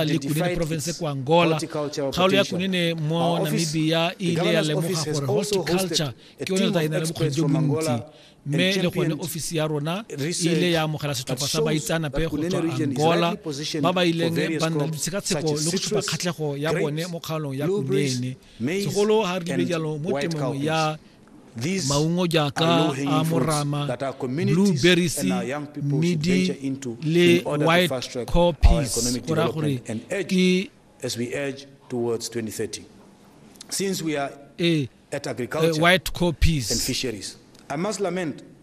le kunene province kwa angola kgaolo ya kunene mo namibia e ile ya lemoga gore horticulture ke yone tla e na le bokgoni jo bontsi mme le gone ofisi ya rona e ile ya amogela setlhopha sa baitsanape go tswa angola ba ba ileng ba nna le ditshekatsheko le go supa kgatlhego ya bone mo kgaolong ya kunene segolo ga re lebe jalo mo temong ya maungo jaaka a morama blue berries midi le white copies go raya gore ke ee eh, white copies and fisheries i must lament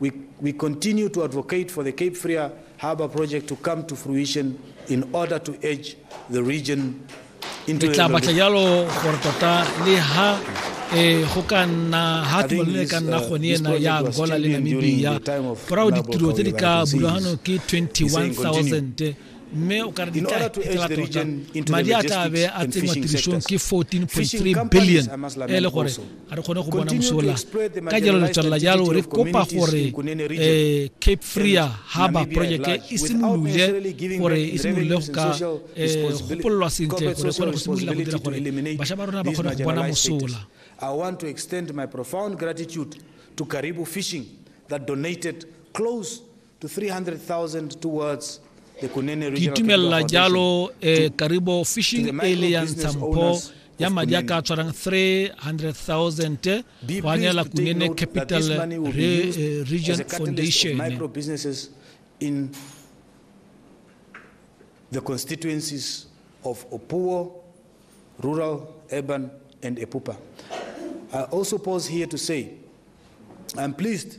We, we continue to advocate for the Cape Fear Harbour project to come to fruition in order to edge the region into the e go ka nna ha tumalano e ka nna uh, gone ena ya angola le namibia ka gore ditiro tse di ka bulagano ke 21000 mme o ka re di tla fetela tota madi a tla be a tsenngwa tirisong ke 14.3 billion e le gore ga re kgone go bona mosola ka jalo le tswelela jalo re kopa gore um cape frea harbour project e simolole gore e simolole go ka um gopololwa sentle gore e kgone go simolola go dira gore bašwa ba rona ba kgone go bona mosola I want to extend my profound gratitude to Karibu Fishing that donated close Ke itumelela jalo eh, Karibo Fishing Alliance Tsampo ya madi a ka tshwarang 300,000 go anyela Kunene Capital Re, eh, Region Foundation in the constituencies of Opuo, rural, urban, and Epupa. I also pause here to say I'm pleased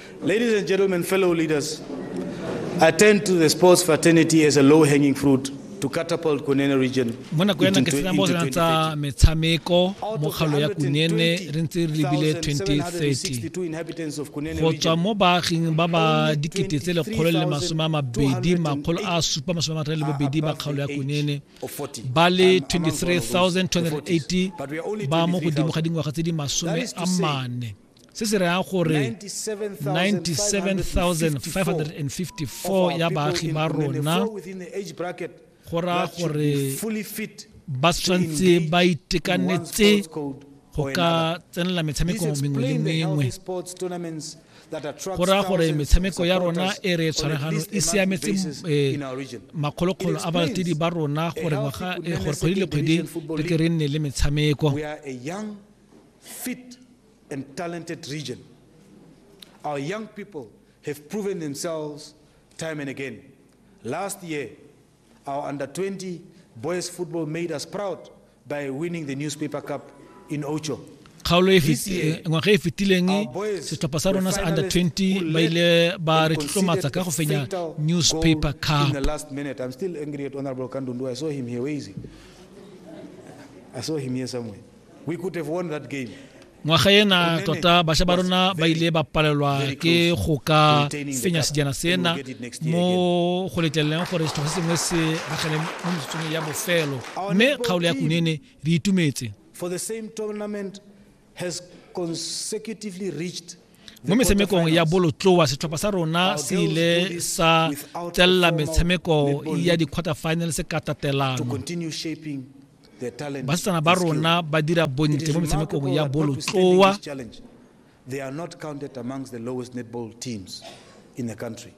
Ladies and gentlemen, fellow leaders, I turn to the sports fraternity as a low-hanging fruit to catapult Kunene region. Mo nako ya ke sena mo re tsa metshameko mo kgalo ya Kunene re ntse re lebile 2030. Go tswa mo baaging ba ba dikete tse lekgolo le masome a mabedi makgolo a supa masome a matlhano le bobedi ba kgalo ya Kunene ba le 23,280 ba mo godimo ga dingwaga tse di masome a mane. se se rayang gore 97554 ya baagi ba rona go raya gore ba tshwanetse ba itekanetse go ka tsenela metshameko mengwe le mengwe go raya gore metshameko ya rona e re tshwaragano e siametse eh, makgolokgolo a balatedi ba rona gore eh, kgwedi le kgwedi re ke re nne le metshameko fit and talented region. Our young people have proven themselves time and again. Last year, our under 20 boys football made us proud by winning the Newspaper Cup in Ocho. kgaolo e eh, ngwaga e fetileng setlhopha sa rona sa under 20 ba ile ba re tlotlomatsa ka go fenya newspaper cup I saw him here somewhere. ngwaga ena tota bašwa ba rona ba ile ba palelwa ke go ka fenya sejana sena mo go letleleleng gore setlhogo se sengwe se ragele mo metsotsong ya bofelo mme kgaolo ya kunene re itumetse mo metshamekong ya bolotloa setlhopha sa rona se ile sa tselela metshameko ya di-quarter finals ka tatelano basetsana ba rona ba dira bontle mo metshamekong ya bolotloa They are not counted amongst the lowest netball teams in the country.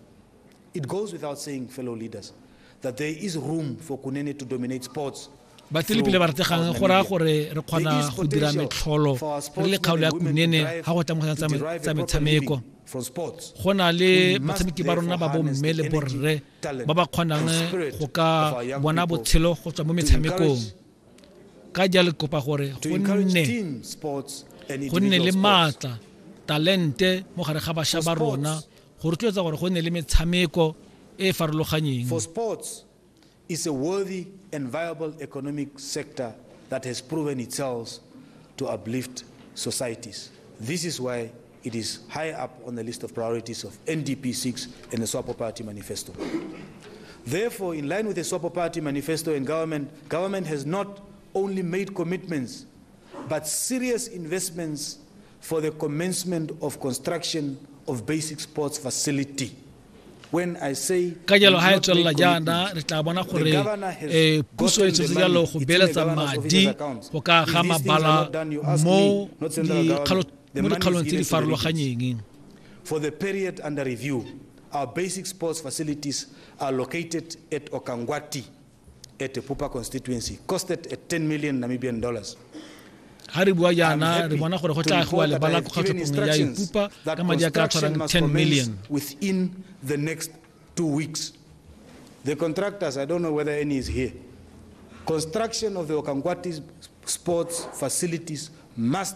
It goes without saying, fellow leaders, that there is room for Kunene to dominate sports ba tselepile ba rategang go raya gore re kgona go dira metlholo re le kgaolo ya kunene ga go tla tsa metshameko go na le batshameki ba rona ba bomme le borre ba ba kgonang go ka bona botshelo go tswa mo metshamekong ka jalo kopa gore go nne go nne le maatla talente mo gare ga bašwa ba rona go rotloetsa gore go nne le metshameko e e farologanyeng is a worthy and viable economic sector that has proven itself to uplift societies. This is why It is high up on the list of priorities of NDP 6 and the Swapo Party manifesto. Therefore, in line with the Swapo Party manifesto and government, government has not only made commitments but serious investments for the commencement of construction of basic sports facility. ka jalo ga e tswelela jaana re tla bona gore um puso e tshetse jalo go beeletsa madi go ka ga mabala mo dikgalo mo dikgaolong tse di farologanyeng For the period under review, our basic sports facilities are located at Okangwati at the Pupa constituency, costed at 10 million Namibian dollars. ga re bua jaana re bona gore go tla agiwa lebala ko kgatlhopong ya ipupa ka madi a ka tshwarang 10 million within the next two weeks the contractors i don't know whether any is here construction of the okangwati sports facilities must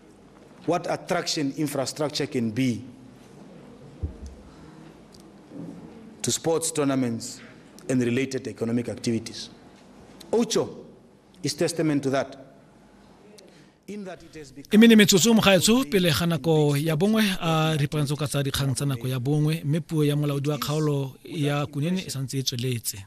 What attraction infrastructure can be to sports tournaments and related economic activities. Ocho is testament to that. e mene metsotso mogaetsho pele ga nako ya bongwe a ripagantse ka tsa dikgang tsa nako ya bongwe mme puo ya molaodi wa kgaolo ya kunene e santse e tsweletse